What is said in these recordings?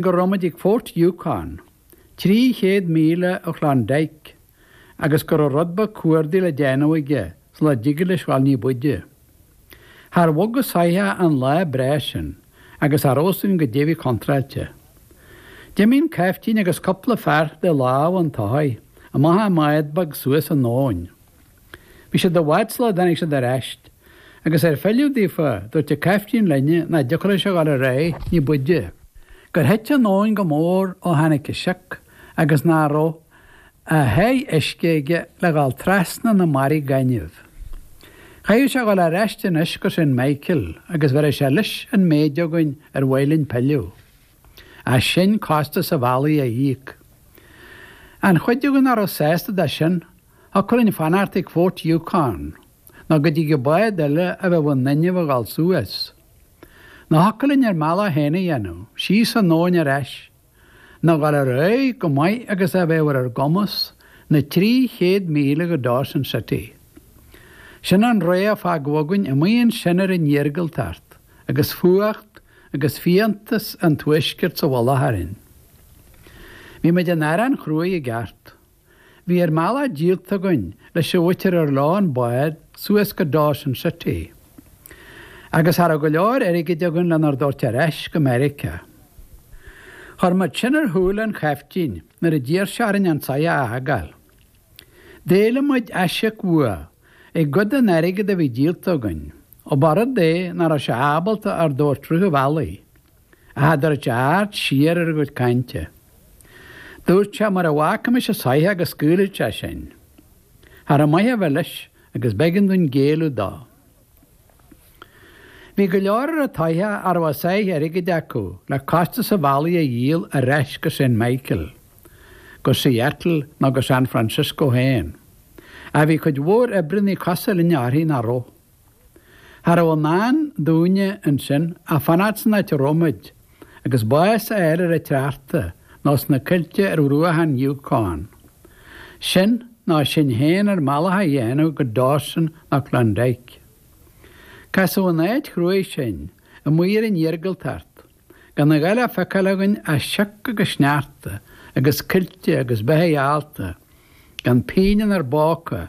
go raibh muid ag Fort Yukon, 300 míle ó Klondike, agus go raibh rud beag cuardaigh le déanamh aige sula dtigeadh leis dhul ní b'fhaide. Char bhog an soitheach an lá breá sin agus cha raibh a fhios againn goidé a bhí contráilte. D'imigh an caiftín agus cupla fear de lámha an tsoithigh amach i mbád beag suas an abhainn. Bhí siad i bhfad sula dtáinig siad ar ais, agus ar philleadh daofa, dúirt an caiftín linn nach dtiocfadh leis a dhul ar aghaidh ní b'fhaide, gur thit an abhainn go mór ó tháinig an sioc agus nach raibh a sháith uisce aige le dhul trasna na mbarraí gainimh. Chaithfeadh sé a dhul ar ais anois go Saint Michael agus bheireadh sé leis an méid againn ar mhaith linn pilleadh ach sinn costas an bhealaigh a íoc. An chuid againn nach raibh sásta de sin, thiocfadh linn fanacht ag Fort Yukon nó go dtigeadh bád eile a bheadh in inmhe a dhul suas. Nó thiocfadh linn ár mbealach féin a dhéanamh, síos an abhainn ar ais, nó a dhul ar aghaidh chomh maith agus a bheadh ar ár gcumas na trí chéad míle go Dawson City. Sin an rogha a fágadh againn amuigh ansin ar an iargúltacht agus fuacht agus fiántas an tuaiscirt sa mhullach orainn. Bhí muid in arán chruaidh i gceart. Bhí ár mbealach díolta againn leis an mhuintir ar leo an bád suas go Dawson City. Agus cha raibh go leor airgid againn lenár dtabhairt ar ais go Meiriceá. Chuir muid sin ar shúile an chaiftín nuair a d'iarr sé orainn an soitheach a fhágáil. D'éiligh muid aisíoc uaidh i gcuid den airgead a bhí díolta againn, ó ba rud é nach raibh sé ábalta ár dtabhairt rith an bhealaigh. a thabhairt aird siar ar ár gcuid cainte. Dúirt sé mura bhfágaimis an soitheach go scaoilfeadh sé sinn. Cha raibh maith a bheith leis agus b'éigean dúinn géilleadh dó. Bhí go leor ar an tsoitheach a raibh a sáith airgid acu le costas an bhealaigh a dhíol ar ais go Saint Michael, go Seattle nó go San Francisco féin. Ach bhí cuid mhór oibríonnaí cosúil linne uirthi nach raibh. Cha rabh i ndán dúinne ansin ach fanacht san áit a rabh muid, agus bás a fháil ar an tsneachta, nó sna coillte ar bhruacha an Yukon. Sin, nó sinn féin ár mbealach a dhéanamh go Dawson nó Klondike. Casadh in áit chruaidh sinn, amuigh ar an iargúltacht, gan a dhath le feiceáil againn ach sioc agus sneachta agus coillte agus beithigh allta, gan pingin inár bpóca,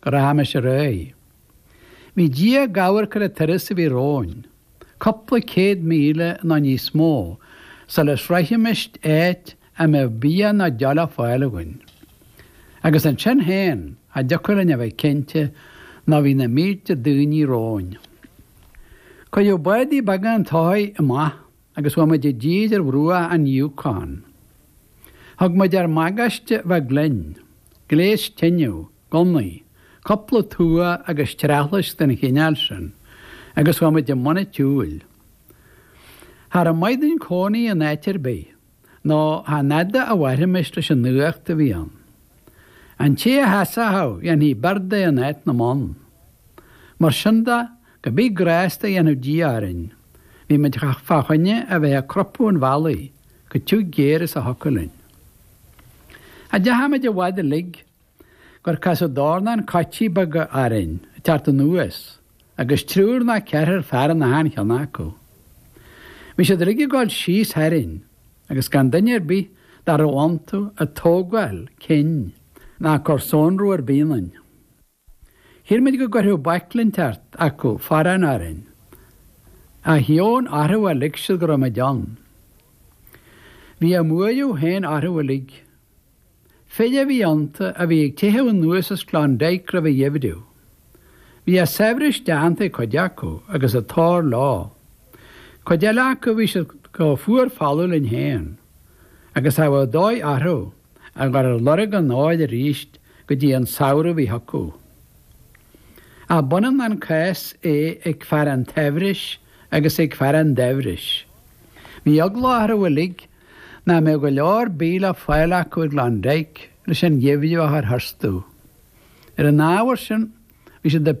go rachaimis ar aghaidh. Bhí Dia ag amharc ar an turas a bhí romhainn, cúpla céad míle nó níos mó sula sroichfimis áit a mbeadh bia ná deoch le fáil againn. Agus ansin féin, cha dtiocfadh linn a bheith cinnte nó bhí na mílte daoine romhainn. Cuireadh bádaí beaga an tsoithigh amach. agus bhí muid i dtír ar bhruach an Yukon. Thug muid ár mbagáiste bheag linn, gléas tineadh, gunnaí, cúpla tua agus treathlaisc den chineál sin, agus bhí muid i mbun an tsiúil. Cha rabh maith dúinn cónaí in áit ar bith, nó chan fhada a mhairfimis leis an fhuacht a bhí ann. An té a sheasfadh dhéanfaí beart de in áit na mbonn. Mar sin de, Cibé grásta a dhéanfadh Dia orainn. Bhí muid fá choinne a bheith ag crupadh an bhealaigh go tiugh géar is a thiocfadh linn. Cha deachaigh muid i bhfad uilig gur casadh dornán coití beaga orainn ag teacht anuas agus triúr ná ceithrear fear in achan cheann acu. Bhí siad uilig ag gabháil síos tharainn agus gan duine ar bith dá rabh iontu ag tógáil cinn ná ag cur sonrú ar bith ionainn. Shíl muid go gcuirfeadh baicle inteacht acu forrán orainn, ach dheamhan orthu ar lig siad go rabh muid ann. Bhí a mbuaireamh féin orthu uilig. Fir a bhí iontu a bhí ag teitheadh anuas as Klondike roimh an gheimhreadh. Bhí a saibhreas déanta ag cuid acu agus an t-ór leo. Cuid eile acu bhí siad chomh fuar folamh linn féin, agus cha raibh dóigh orthu. a ghabháil ar lorg an óir arís go dtí an samhradh a bhí chucu. Ab ionann an cás é ag fear an tsaibhris agus ag fear an daibhris. Bhí eagla orthu uilig nach mbeadh go leor bídh le fáil acu i gClondyke leis an gheimhreadh a chur tharstu. Ar an ábhar sin, bhí siad ag